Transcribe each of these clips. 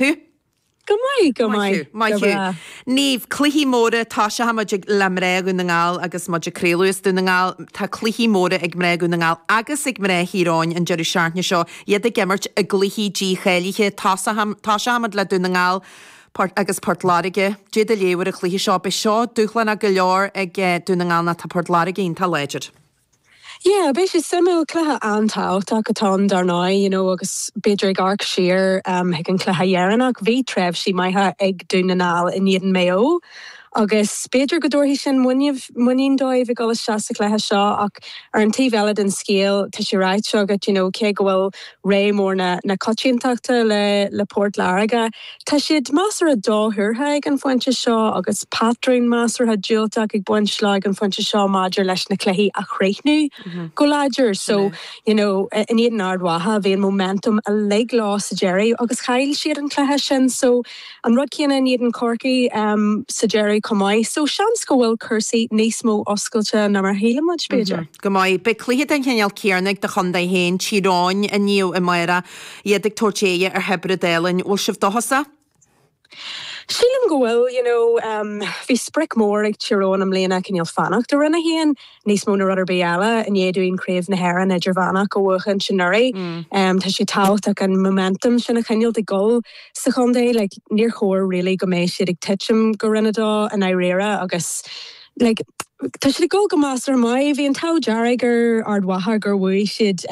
Hue. Go maith, go maith, go breá. Niamh, cluichí móra, tosóidh muid le mná Dhún na nGall agus muid ag craoladh as Dún na nGall, tá cluichí móra ag mná Dhún na nGall agus ag mná Thír Eoghain an deireadh seachtaine seo, iad ag imirt i gcluichí dícháilithe. Tosóidh muid le Dún na nGall, Port, agus Port Láirge. Cad é do léamh ar an chluiche seo. Beidh seo dúshlánach go leor ag Dún na nGall nó tá Port Láirge iontach láidir. Yeah, beidh sé suimiúil, cluiche an-tábhachtach atá ann dar ndóigh, you know, agus b'fhéidir ag amharc siar chuig an cluiche dheireanach, bhí tréimhsí maithe ag Dún na nGall in éadan Maigh Eo agus b'fhéidir go dtabharfaidh sin muinín, muinín dóibh ag dul isteach sa chluiche seo ach ar an taobh eile den scéal tá sé ráite agat, you know, cé go bhfuil rogha mór na coitiantachta le Port Láirge. Tá siad measartha dothuartha ag an phointe seo agus patrún measartha diúltach ag baint leo ag an phointe seo maidir leis na cluichí a chríochnú go láidir. So, you know, in éadan Ard Mhacha bhí an momentum uilig leo sa deireadh agus chaill siad an cluiche sin. So. An rud céanna in éadan Chorcaí sa deireadh chomh maith, so seans go bhfuil cúrsaí níos mó oscailte ná mar a shíl muid, b'fhéidir. Go maith. Beidh cluiche den chineál céanna ag do chontae féin, Tír Eoghain, inniu i mBiorra, iad ag tabhairt aghaidh ar Thiobraid Árann. Bhfuil sibh dóchasach? Sílim go bhfuil, you know. Bhí sprioc mór ag Tír Eoghain i mbliana, cineál fanacht i Roinn 1. níos mó na rud ar bith eile, i ndiaidh dúinn Craobh na hÉireann idirmheánach a bhuachaint anuraidh, tá sé tábhachtach an momentum sin a choinneáilt ag dul sa chontae. Like, níor chóir really go mbeidh siad ag titim go Roinn a dó i ndáiríre agus like tá siad ag dul go measartha maith. Bhí an t-ádh dearg ar Ard Mhacha gur bhuaigh siad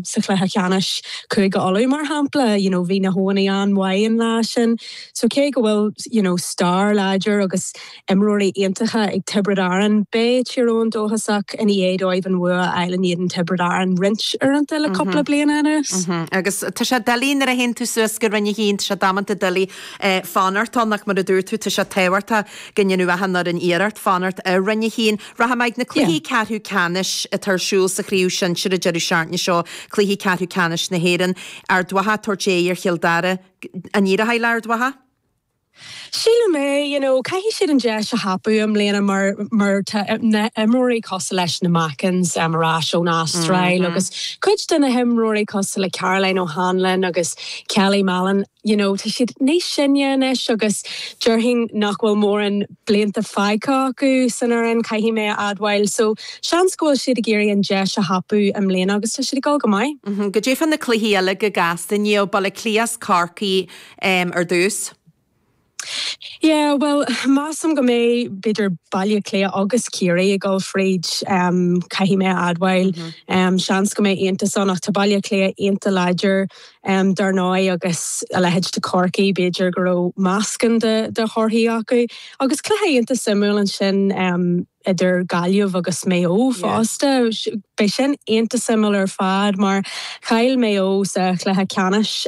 sa chluiche cheannais Cúige Uladh mar shampla, you know, bhí na hEoghanaigh an-mhaith an lá sin. So cé go bhfuil, you know, stair láidir agus. imreoirí iontacha ag Tiobraid Árann. Beidh Tír Eoghain dóchasach ina dhiaidh dóibh an bhua a fháil in éadan Tiobraid Árann roinnt uaireanta le cúpla bliana anuas. Agus tá sé doiligh nuair a théann tú suas go Roinn 1, tá sé damanta doiligh fanacht ann, ach mar a dúirt tú, tá sé tábhachtach go ndéanfadh achan fhoireann iarracht fanacht i Roinn 1. Rachaidh muid chuig na cluichí ceathrú ceannais atá ar siúl sa chraobh shinsir an deireadh seachtaine seo, cluichí ceathrú ceannais na hÉireann. Ard Mhacha ag tabhairt aghaidh ar Chill Dara. An éireochaidh le hArd Mhacha? Sílim é, you know, caithfidh siad an deis a thapú i mbliana mar, mar tá na himreoirí cosúil leis na Mackins ar ais ón Astráil agus cuid de na himreoirí cosúil le Caroline O'Hanlon agus Kelly Mallon, you know, tá siad níos sine anois agus déarfainn nach bhfuil mórán blianta fágtha acu san fhoireann, caithfidh mé a admháil. So, seans go bhfuil siad ag iarraidh an deis a thapú i mbliana agus tá siad ag dul go maith. Cad é fá na cluichí eile go gasta, Niamh, Baile Átha Cliath 's Corcaigh am ar dtús. Yeah bhuel measaim go mbeidh b'fhéidir Baile Cliath agus Ciarraí ag dul fríd caithfidh mé a admháil. Seans go mbeidh iontas ann ach tá Baile Cliath iontach láidir dar ndóigh agus a leithéid de Chorcaigh b'fhéidir go raibh meascán de thorthaí acu. Agus cluiche iontach suimiúil ansin. idir Gaillimh agus Maigh Eo fosta. Beidh sin iontach suimiúil ar fad mar chaill Maigh Eo sa chluiche ceannais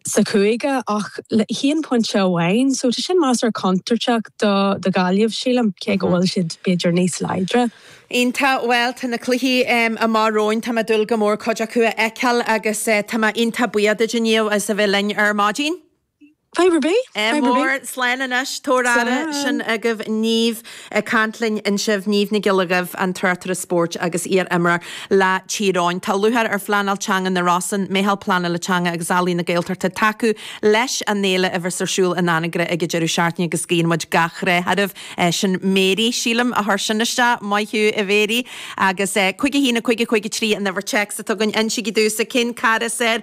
sa chúige ach le haon phointe amháin so tá sin measartha contúirteach do Ghaillimh sílim, cé go bhfuil siad b'fhéidir níos láidre. Iontach, bhuel tá na cluichí amuigh romhainn, tá mé ag dúil go mór cuid acu a fheiceáil agus tá mé iontach buíoch díot inniu as a bheith linn ar maidin. Go raibh maith agat, go raibh maith agat. Mór, slán anois, tabhair aire, slán. Sin agaibh Niamh ag caint linn ansin, Niamh Nic Giolla Dhuibh, an tráchtaire spóirt agus iar-imreoir le Tír Eoghain. Tá lúcháir ar Phleanáil Teanga na Rosann, Meitheal Pleanála Teanga agus Ealaíon na Gaeltachta tacú leis an fhéile a bheas ar siúl in Anagaire ag an deireadh seachtaine agus guíonn muid gach rath oraibh. Sin Mary, sílim, a chuir sin isteach, maith thú a Mhary. Agus, 51 50 53 an uimhir téacs atá againn, insígí domhsa cén cara is fhearr